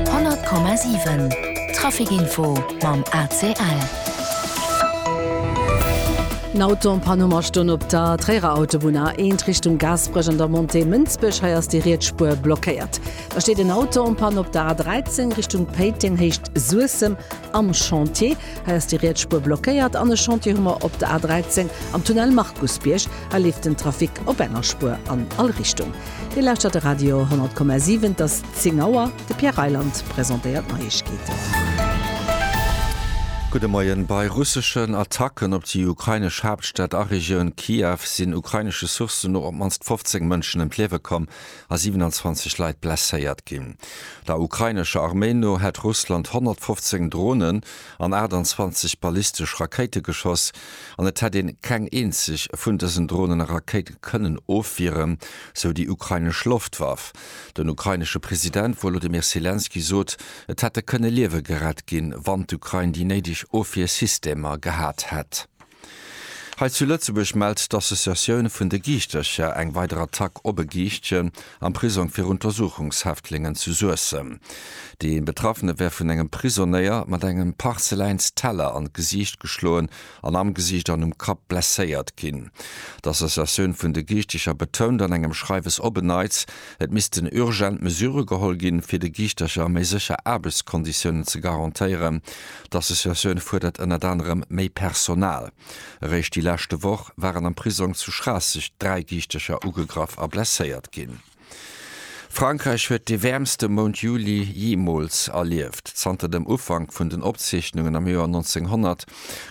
100,7 Trafic info mam ACL. En Auto am Panuma stoung op der Tréierer Autobunn, A1 Richtung Gaasperech an der Montée Mënsbech. Hei ass déi riets Spuer blockéiert. Da steet en Auto en Panne op der A13 Richtung Péiteng, Héicht Suessem am Chantier. Hei ass déi riets Spuer blockéiert. An e Chantier hu mer op der A13 am Tunnel Markusbierg. Hei leeft den Trafic op enger Spuer an all Richtung. Dir lauschtert de Radio 10,7. Et ass 10 Auer. De Pierre Reyland presentéiert d'Neiegkeeten. Gudde Moien. Bei russeschen Attacken op déi ukrainesch Haaptstad a Regioun Kiew sinn ukrainesche Sourcen no op d'mannst 15 Mënschen ëm d'Liewe komm a 27 Leit blesséiert ginn. Der ukrainescher Arméi no hätt Russland 115 Dronen, an 28 ballistesch Rakéite geschoss an et hätt een keng eenzeg vun dësen Dronen a Rakéite kënnen ofwieren, sou déi ukrainesch Loftwaff. Den ukrainesche President Wolodymyr Selenskyj sot, et hätte kënne Liewe gerett ginn, wann d'Ukrain déi néideg Ofwiersystemer gehat hätt. Hei zu Lëtzebuerg mellt d'Associatioun vun de Giischtercher eng weider Attack op e Giischtchen am Prisong fir Untersuchungshäftlingen zu Suessem. Dee Betraffene wär vun engem Prisonéier mat engem Parzeläinsteller an d'Gesiicht geschloen an am Gesiicht an um Kapp blesséiert ginn. D'Associatioun vun de Giischtecher betount an engem Schreiwes op en Neits, et missten urgent Mesure geholl ginn, fir de Giischtercher méi sécher Aarbechtskonditiounen ze garantéieren, D'Associatioun fuerdert ënnert anerem méi Personal. Eréischt déi leschte Woch waren am Prisong zu Schraasseg dräi Giichtecher ugegraff a blesséiert ginn. Frankräich huet dee wäermste Mount Juli jeemools erlieft. Zanter dem Ufank vun den Opzeechnungen am Joer 1900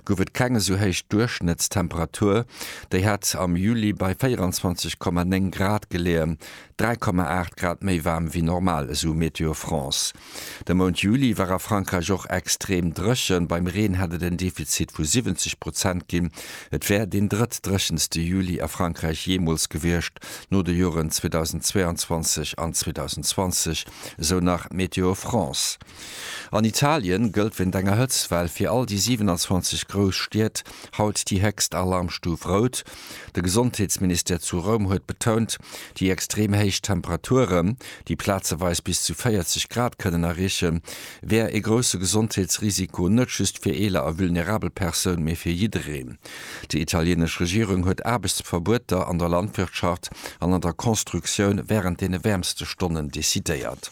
gouf et keng esou héich Duerchschnëttstemperatur. Déi hätt am Juli bei 24,9 Grad geleeën, 3,8 Grad méi waarm wéi normal, esou Météo France. De Mount Juli war a Frankräich och extrem dréchen. Beim Reen hätt et en Defizit vu 70 Prozent ginn. Et wär deen drëttdréchenste Juli a Frankräich jeemools gewiescht, no de Joren 2022 an 2020, esou nach Météo France. An Italien gëllt wéint enger Hëtztwell fir all déi 27 grouss Stied haut déi héchst Alarmstuf Rout. De Gesondheetsministère zu Roum huet betount, déi extrem héich Temperaturen, déi plazeweis bis zu 40 Grad kënnen erreeche, wär ee grousse Gesondheetsrisiko net just fir eeler a vulnerabel Persoun, mee fir jiddereen. Déi italieenesch Regierung huet Aarbechtsverbueter an der Landwirtschaft an an der Constructioun wärend deene wäermste Stonnen decidéiert.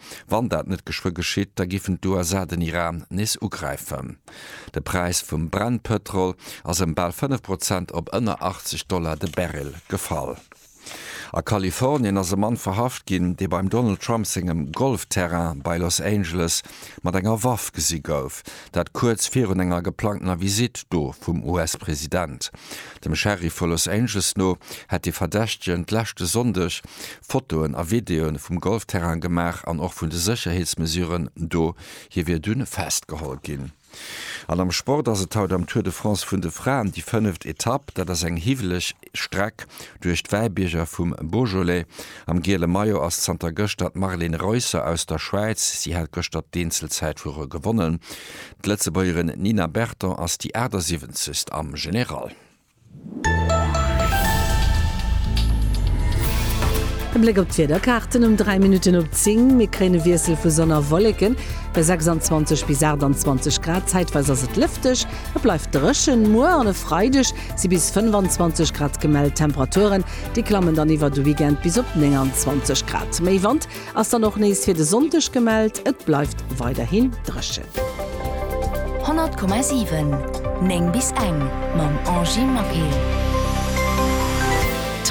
Wann dat net geschwë geschitt, da giffen d'USA den Iran nees ugräifen. De Präis vum Brennpëtrol ass ëm bal 5 Prozent op ënner 80 Dollar de Barrel gefall. A Kalifornien ass e Mann verhaft ginn, dee beim Donald Trump sengem Golfterrain bei Los Angeles mat enger Waff gesi gouf. Dat kuerz virun enger geplangtener Visitt do vum US-President. Dem Sheriff vu Los Angeles no hätt de Verdächtegen d'leschte Sonndeg Fotoen a Videoen vum Golfterrain gemaach an och vun de Sécherheetsmesuren do. Hie wier dunn festgeholl ginn. An am Sport ass et haut am Tour de France vun de Fraen déi fënneft Etapp. Dat ass eng hiwweleg Streck duerch d'Wäibierger vum Beaujolais. Am giele Maillot ass zanter gëschter d'Marlene Reusser aus der Schwäiz. Si hat gëschter d'Eenzelzäit vu gewonnen. D'Lëtzebuergerin Nina Berton ass déi 78. am General. E Bléck op d'Wiederkaarten um 3 Minutten op 10, Mir kréien e Wiessel vu Sonn a Wolleken bei 26 bis 28 Grad. Zäitweis ass et lëfteg, et bleift dréchen. Muer an e Freideg si bis 25 Grad gemellt. D'Temperaturen, déi klammen dann iwwer de Weekend bis op 29 Grad. Méi Wand Ass dann och nees fir de Sonndeg gemellt, et bleift weiderhin dréchen. 100,7 9 bis eng mam Angie Maquet.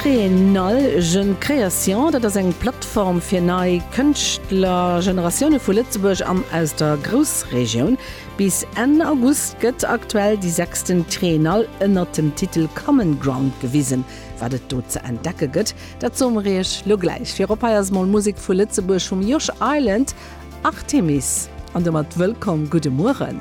Triennale Jeune Création, dat ass eng Plattform fir nei Kënschtlergeneratioune vu Lëtzebuerg an aus der Groussregioun. Bis Enn August gëtt aktuell déi sechsten Triennale ënnert dem Titel Common Ground gewisen. Wat et do ze entdecke gëtt, dat soe mer iech lo gläich. Virop hei ass mol Musek vu Lëtzebuerg vum Josh Island, Artemis. An domat wëllkomm, gudde Mueren.